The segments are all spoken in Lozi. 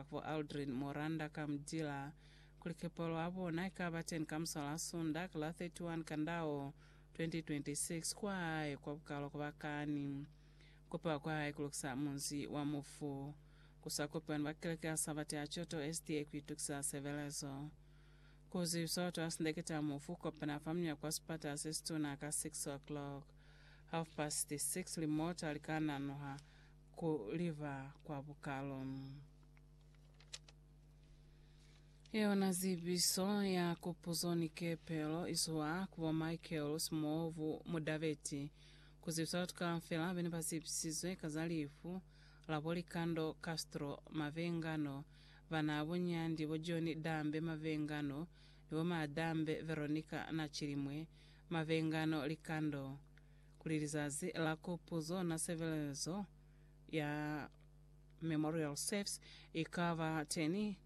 Bo Aldrin Moranda ka Mdila, kuli kepalo ya bona ikaba teni ka musa la Sunda ka la 31 Kandao 2026 kwa hae kwa Bukalo kwa bakani. Kupewa kwa hae kulukisa munzi wa mufu. Kusa kupewa ni ba keleke ya Sabate ya Choto SDA kuitukisa sebelezo. Ku zibisa batu ba sindekete ya mufu kukopana fa muña kwa sipata sesituna ka 6:00. Half past 6 limota lika nanuha. ku liba kwa bukalo. Yona zibiso ya kupuzo ni kepelo izwa ku bo Michael Simovu Mudabeti kuzibisa batu kaufela bene bazibisizwe ka za lifu la bo Likando Castro Mavengano, bana bo Nyandi bo John Dambe Mavengano ni bo Madambe Veronica na Chilimwe Mavengano Likando. kuli lizazi la kupuzo na sebelezo ya Memorial Service i ka ba teni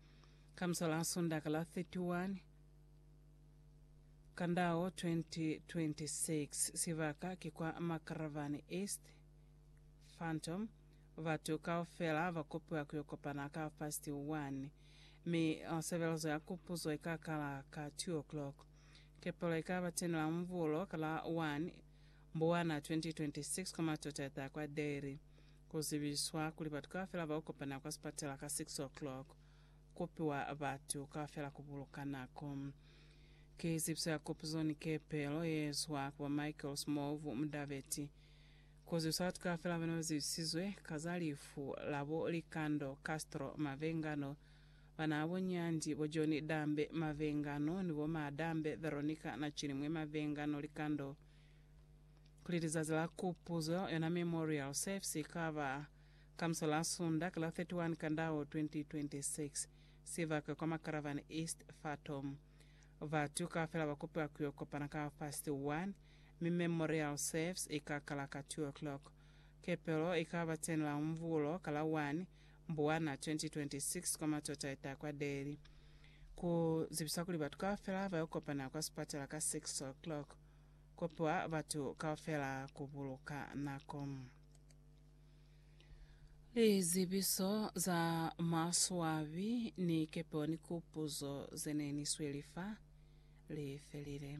ka misa la Sundaka la 31 Kandao 2026. Sibaka ki kwa Makaravani East, Phantom. Batu kaufela ba kopiwa ku yo kopana ka half past one, mi sebelezo ya kupuzo i ka kala ka two o'clock. Kepelo ikaba teni la Mvulo ka la 1 Mbuwana 2026 kwa matota ataa kwa Dairy. Kuzibiswa kuli batu kaufela baukopana kwa sipatela ka 6 o'clock. Kupiwa batu kaufela kubuluka nako. Ki zibiso ya kupuzo ni kepelo yeezwa ku ba Michael Smovu Mudabeti. Kuzibisa batu kaufela bana bazibisizwe ka za lifu labo Likando Castro Mavengano. Banaabo Nyandi, bo John Dambe Mavengano ni bo Maa Dambe Veronica Nachilimwe Mavengano likando kuli lizazi la kupuzo yona Memorial Service ikaba ka muso la Sunda ka la 31 Kandao 2026 sibaka kwa Makaravane East Fatom. Batu kaufela bakopiwa kuyo kopana ka half past one mi Memorial Service ikakala ka two o'clock. Kepelo ikaba 10 la umvulo ka la one Mbwana 2026 kwa Matota eta kwa Deli. Ku zibisa kuli batu kaufela ba yo kopana kwa sipatela ka 6 o'clock. Kopiwa batu kaufela ku buluka nako. Lizibiso za maswabi ni kepeo ni kupuzo ze ne ni sweli fa li felile.